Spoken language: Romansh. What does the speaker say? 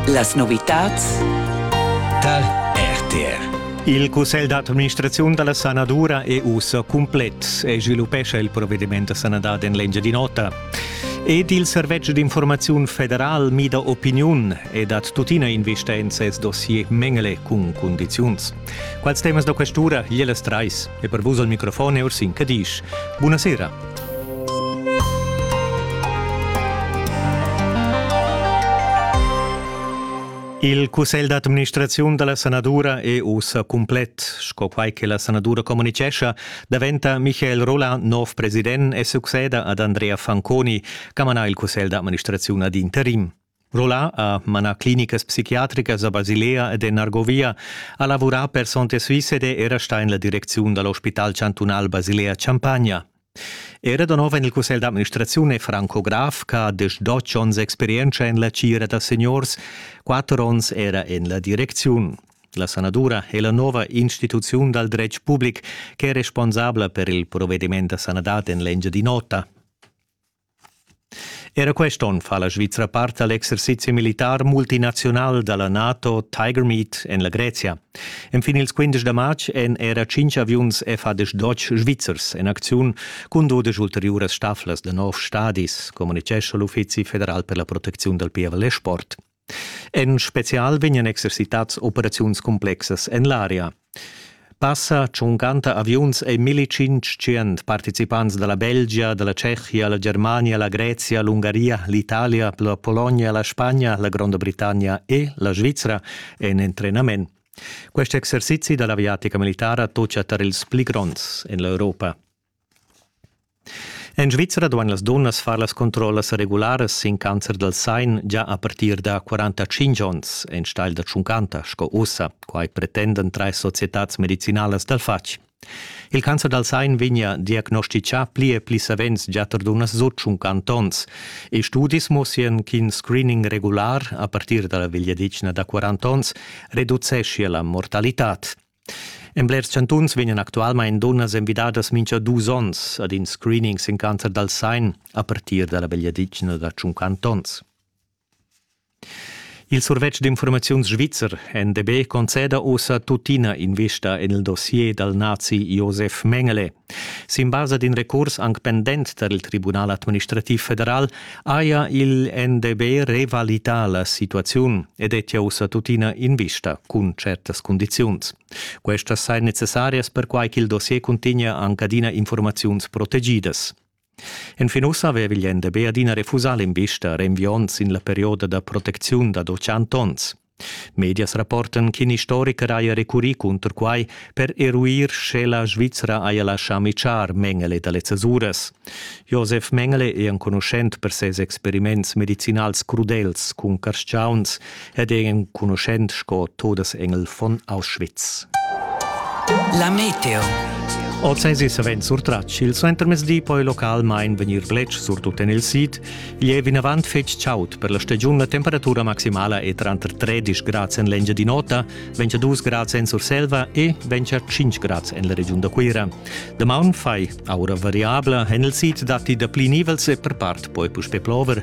Las novitads tar RTR. Il cussegl d'administraziun da la sanadura è ussa cumplet e sviluppescha il provvediment da sanadad en l'Engiadin'Ota. Ed il servetsch d'informaziun federal mida opiniun e dat tuttina invista en ses dossier mengele cun cundiziuns. Quals temas da questura, gli las trais. E per vus al microfon è Ursin Cadisch. Buonasera. Il cussegl d'administraziun da la sanadura è ussa cumplet. Sco quai che la sanadura communitgescha, daventa Michael Roland nov president e succeda ad Andrea Fanconi, che mana il cussegl d'administraziun ad interim. Roland ha manà clinicas psichiatricas a Basilea ed en Argovia, ha lavurà per Santé Suisse ed è era stà en la direcziun da l'ospital chantunal Basilea Champagna. Era da nov en il cussegl d'administraziun è Franco Graf, che ha desch onns experientscha en la tgira da seniors, quatter onns era en la direcziun. La sanadura è la nova instituziun dal dretg public che è responsabla per il provediment da sanadad en l'Engiadin'Ota. Era quest onn fa la Svizra part da l'exercizi militar multinaziunal da la NATO Tiger Meet en la Grezia. Enfin ils 15 da matg èn era tschintg aviuns FADES-Dodge svizzers en acziun cun dudesch ulteriuras staflas da nov stadis, communitgescha l'Uffizi federal per la protecziun dal pievel e sport. En special vegnan exercitats operaziuns complexas en l'aria. Passa 50 aviuns e 1500 participants dalla Belgia, dalla Tschechia, la Germania, la Grezia, l'Ungaria, l'Italia, la Polonia, la Spagna, la Gronda Britannia e la Svizzera en entrenament. Questi exercizi dall'aviatica militara toccia tar ils pli gronds en l'Europa. En Svizra duain las dunnas far las controllas regularas sin cancer dal sain gia a partir da 45 onns, enstagl da 50 sco ussa. Quai pretendan trais societads medicinalas dal fatg. Il cancer dal sain vegnia diagnostitgà pli e pli savens gia tar dunnas sut 50 onns. E studis mussian ch'in screening regular a partir da la vegliadetgna da 40 onns reduceschia la mortalitad. En blers chantuns vegnan actualmein dunnas envidadas mincha dus onns ad in screenings in cancer dal sein a partir dalla vegliadetgna da tschunquant onns. Il survetsch d'informaziuns svizzer NDB conceda ossa tuttina investa en il dossier dal nazi Josef Mengele, Sin basa d'in recurs anc pendent tar il Tribunal administrativ federal haja il NDB revalidà la situaziun e dettia ussa tuttina invista cun certas cundiziuns. Questas sain necessarias perquai ch'il dossier cuntegna anc adina informaziuns protegidas. Enfin ussa vev'igl ende be adina refusà l'invista renviond sin la perioda da protecziun da docent onns. Medias rapportan ch'in'istorica haja recurrì cunter quai per eruir sche la Svizra haja laschà mitschar Mengele da lezzas uras. Josef Mengele è enconuschent per ses experiments medicinals crudels cun carstgauns ed è enconuschent sco Todesengel von Auschwitz. La meteo. Ozzesi savens surtratg il suentermezdi poi localmain vegnir bletsch surtut en il sid. Igl è vinavant fetg chaud per la stagiun. La temperatura maximala è tranter 13 grads en l'Engiadin'Ota, 22 grads en Surselva e 25 grads en la regiun da Cuira. Damaun fai aura variabla. En il sid datti dapli nivels e per part poi puspè plover.